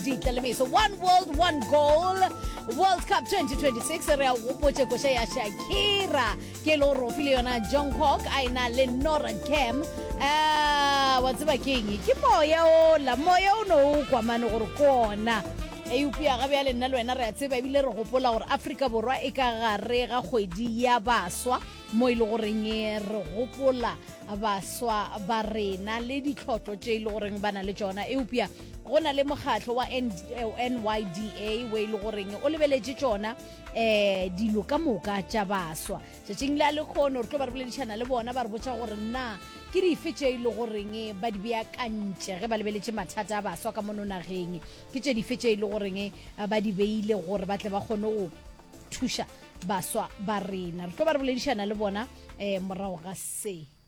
ditlaleletso one world one goal world cup 2026 re a o gopotše koša ya shakira ke e le gore o file yona jongkok a e na le nora cam Ah, wa tseba ke eng ke moya ola moya o ne o kwamane gore ke ona eupša ga bjale nna le wena re a tseba ebile re gopola gore aforika borwa e ka gare ga kgwedi ya baswa mo e le goreng eh, re gopola baswa ba rena le ditlhotlo tše e le goreng ba na le tšona eupša go na le mokgatlho wa nyda o e le goreng o lebeletše tsona um dilo ka moka tša baswa tšatšing le a lekgono re tlo ba re boledišana le bona ba re botsa gore na ke dife tše e le goreng ba di beakantše ge ba lebeletše mathata a baswa ka mono nageng ke tše dife tše e le goreng ba di beile gore ba tle ba kgone go thuša baswa ba rena re tlo ba re boledišana le bona um morago ga se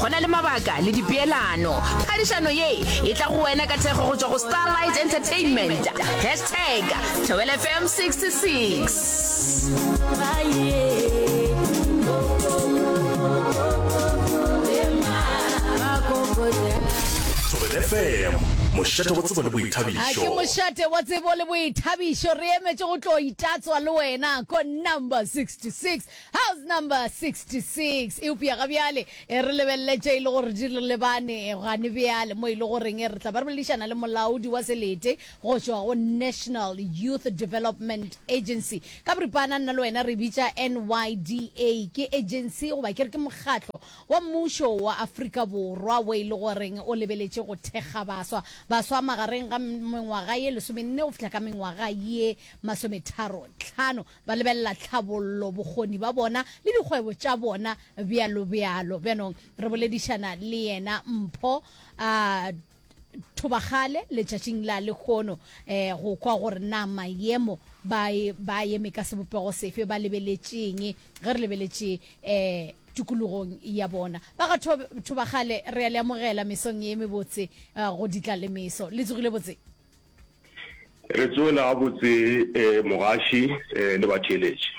go na le mabaka le dipeelano phadišano ye e tla go wena ka thekgo go tšwa go starlight entertainment hashtag thobel fm 66 mošate wa tsebo le boithabišoake mošate wa tsebo le boithabišo re emetše go tlo itatswa le wena ko number 66 House number 66. Eupša ga bjale e re lebelele tše e le gore di re lebane gane bjale, mo e le goreng e re tla ba re boledišana le molaodi wa selete go tšwa go National Youth Development Agency. Ka boripana nna le wena re e bitša NYDA. Ke agency goba ke re ke mokgatlo wa mmušo wa Afrika Borwa wo e le goreng o lebeletše go thekga baswa. Baswa magareng ga mengwaga ye lesomenne go fihla ka mengwaga ye masometharo tlhano. Ba lebelela tlhabollo, bokgoni ba bona le dikgwebo tša bona, bjalo bjalo. Bjanong re boledišana le yena Mpho a Thobagale letšatšing la lekgono eh, go kwa gore na mayemo ba e, ba eme ka sebopego sefe, ba lebeletše'ng ge re lebeletše eh, tikologong ya bona. Ba ga Thobagale re a le amogela mesong ye mebotse eh, go ditla le meso. Le tsogile botse? Re tsoela gabotse eh, mogaši eh, le batheeletši.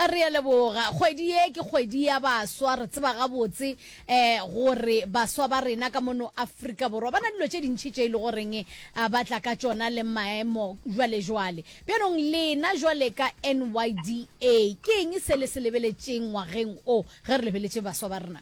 Re a leboga. Kgwedi ye ke kgwedi ya baswa. Re tseba gabotse eh, gore baswa ba rena ka mono Afrika Borwa ba na dilo tše dintši tše e le goreng eh, ba tla ka tšona le maemo jwalejwale. Bjanong lena jwale ka NYDA, ke eng se le se lebeletšeng ngwageng o ge re lebeletše baswa ba rena?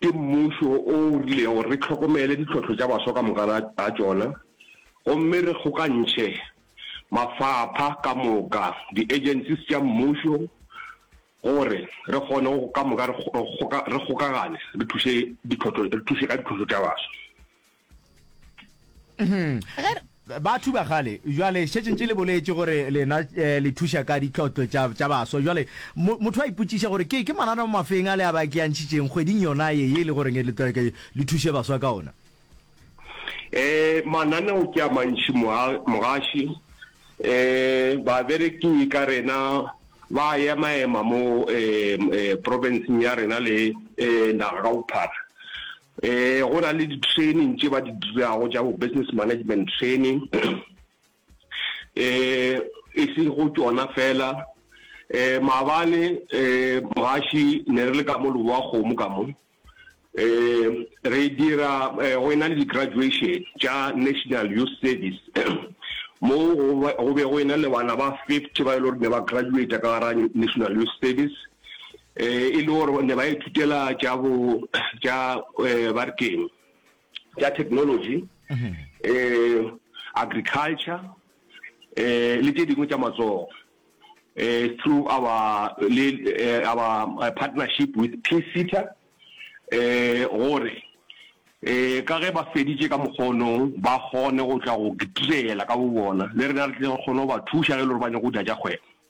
Ke mmušo o o rilego gore re hlokomele ditlhohlo tša baswa ka moka ga tšona gomme re kgokantšhe mafapha ka moka, di-agencies tša mmušo gore re kgone go ka moka re kgokagane re thuše ka ditlhohlo tša baswa. batho ba gale jwale šetšeng tše le boletše gore lena eh, le thuša ka ditlotlo tša baswa jwale motho a ipotšiša gore ke ke manana mo mafeng a le a ba ke yantšhitšeng kgweding yona ye ye e le goreng e le thuše baswa ka ona eh mananeo ke a mantši mogaši eh babereki ka rena ba ema ema mo eh, eh provinceng ya rena le eh naga ka bophara Ee, go na le di-training tše ba di dirago tša bo business management training um e se go tšona fela um maabane um mogaši ne re le ka mo leboa kgomo ka mo um re dira go ena le di-graduation tša national youth service mo go be go ena le bana ba fifty ba e le gore ne ba graduata ka gara national youth service e le gore ne ba ithutela tša bo tša ba re keng tša technology um agriculture um le tše dingwe tša matsogo um through our le our partnership with pcita um gore um ka ge ba feditše ka mokgonong ba kgone go tla go direla ka bo bona le rena re tle re kgone go ba thuša ge e le gore ba nyako go dira tša kgwebo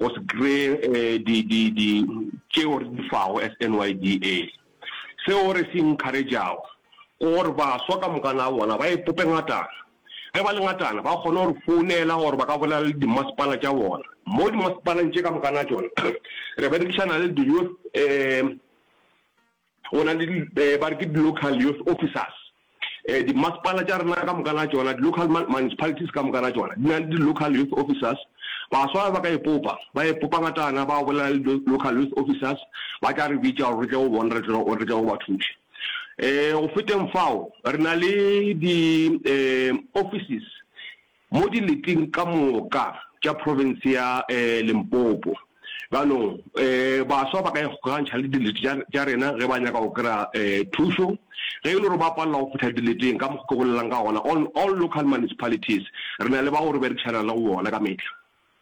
o se kry-e di di di tšeo re di fago as NYDA. Seo re se encourage-ago ke gore baswa ka moka na bona ba ipope ngatana, ge ba le ngatana ba kgone go re founela gore ba ka bolela le dimmasepala tša bona. Mo dimmasepaleng tše ka moka na tšona re berekišana le di-youth Go na le di, ba re ke di-local youth officers. Dimasepala tša rena ka moka na tšona, di-local municipalities ka moka na tšona, di na le di-local youth officers. Baswa ba ka ipopa, ba ipopa ngatana, ba bolela le di-local youth officers, ba tla re bitša gore re tle go bona, re tle, re tle go ba thuša. Go feteng fao, re na le di, offices Mo dileting ka moka tša profense ya Limpopo bjanong, baswa ba ka ikgokagantšha le dilete tša rena ge ba nyaka go kry-a thušo. Ge e le gore ba palela go fihla dileteng, ka mokgwa ke bolelelang ka gona, all local municipalities re na le bao re berekišanang le go bona ka mehla.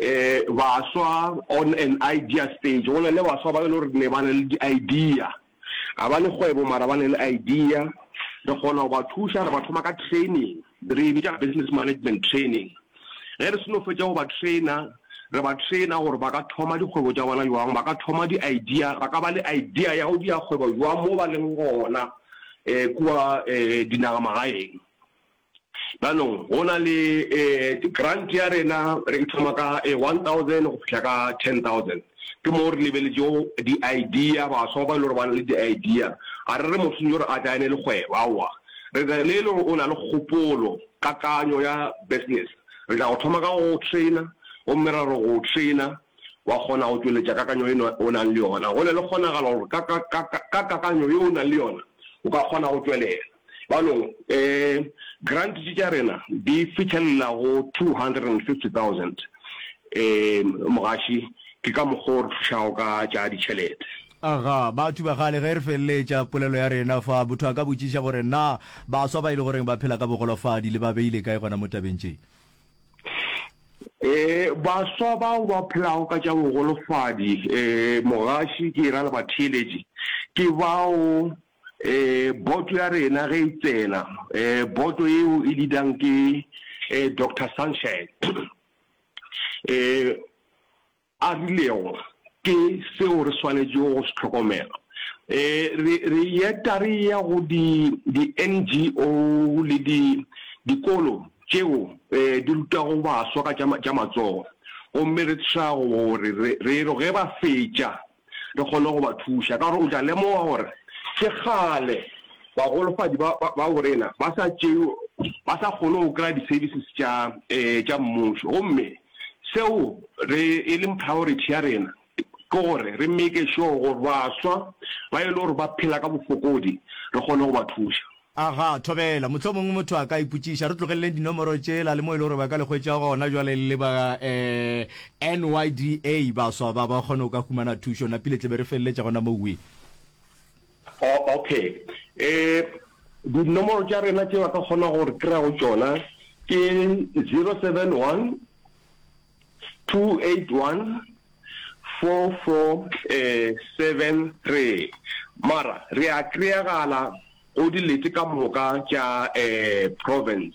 E, baswa on an idea stage, go na le baswa ba e le gore ne ba na le di-idea, ga ba ne kgwebo mara ba na le idea, re kgona go ba thuša, re ba thoma ka training, re e bitša business management training. Ge re seno fetša go ba trainer, re ba trainer gore ba ka thoma dikgwebo tša bona bjang, ba ka thoma di-idea, ba ka ba le idea ya go dira kgwebo bjang mo ba leng gona um kua um dinagamagaeng. Jaanong go na le grant ya rena re e thoma ka one thousand go fitlha ka ten thousand. Ke moo re lebeletšego di-idea, baswa ba e le gore ba na le di-idea. Ga re re motho yo re a tla ene le kgwebo, aowa. Re re le e le gore o na le kgopolo, kakanyo ya business, re tla go thoma ka go go trainer gomme ra re go o trainer wa kgona go tšweletša kakanyo eno o nang le yona. Go na le kgonagalo gore ka kakanyo ye o nang le yona o ka kgona go tšwelela. Bjalo, grant tše tša rena di fihlelela go 250,000 mogaši. Ke ka mokgwa o re thušago ka tša ditšhelete. Aga, batho ba kgale, ge re feleletša polelo ya rena fa, motho a ka botšiša gore, Na baswa ba e le goreng ba phela ka bogolofadi le ba beile kae gona mo tabeng tše? Ee, baswa bao ba phelago ka tša bogolofadi, mogaši, ke e ra le batheeletši, ke bao Boto ya rena ge e tsena, boto yeo e leadang ke Doctor Sunshine a rilego ke seo re swanetšego go se hlokomela. Re eta re eya go di-NGO le dikolo tšeo di rutago baswa ka tša matsogo gomme re tšhaba gore re re ge ba fetša, re kgone go ba thuša, ka gore o tla lemoga gore ke kgale bagolofadi ba, ba, ba borena ba sa tšewe, ba sa kgone go kry-a di-services tša, um tša mmušo. Gomme seo re, e leng priority ya rena ke gore re make sure gore baswa ba e le gore ba phela ka bofokodi re kgone go ba thuša. Aga, thobela. Mohlomongwe motho a ka ipotšiša, re tlogeleleng dinomoro tšela le mo e le gore ba ka le hwetša gona bjale le le ba NYDA, baswa ba ba kgone go ka humana thušo. Na pile tle be re feleletša gona moo, Wee? Oh, okay. Ee, dinomoro tša rena tše ba ka kgonago go re kry-a go tšona ke zero seven one. 2814473 mara re a kry-agala go dilete ka moka tša province.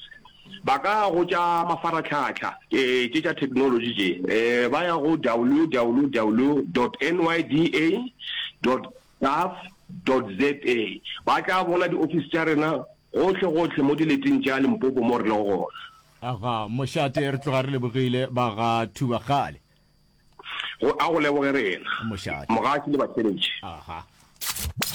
Ba ka ya go tša mafaratlhatlha tše tša technology tše, ba ya go www dot nyda dot gov dot za ba tla bona di office tša rena gohle gohle mo dileteng tša Limpopo mo re lego gona. Aga mošate, re tloga re lebogile ba ga Thuba kgale. Go, a go leboge rena. Mošate. Mogatši le batheletši. Aha.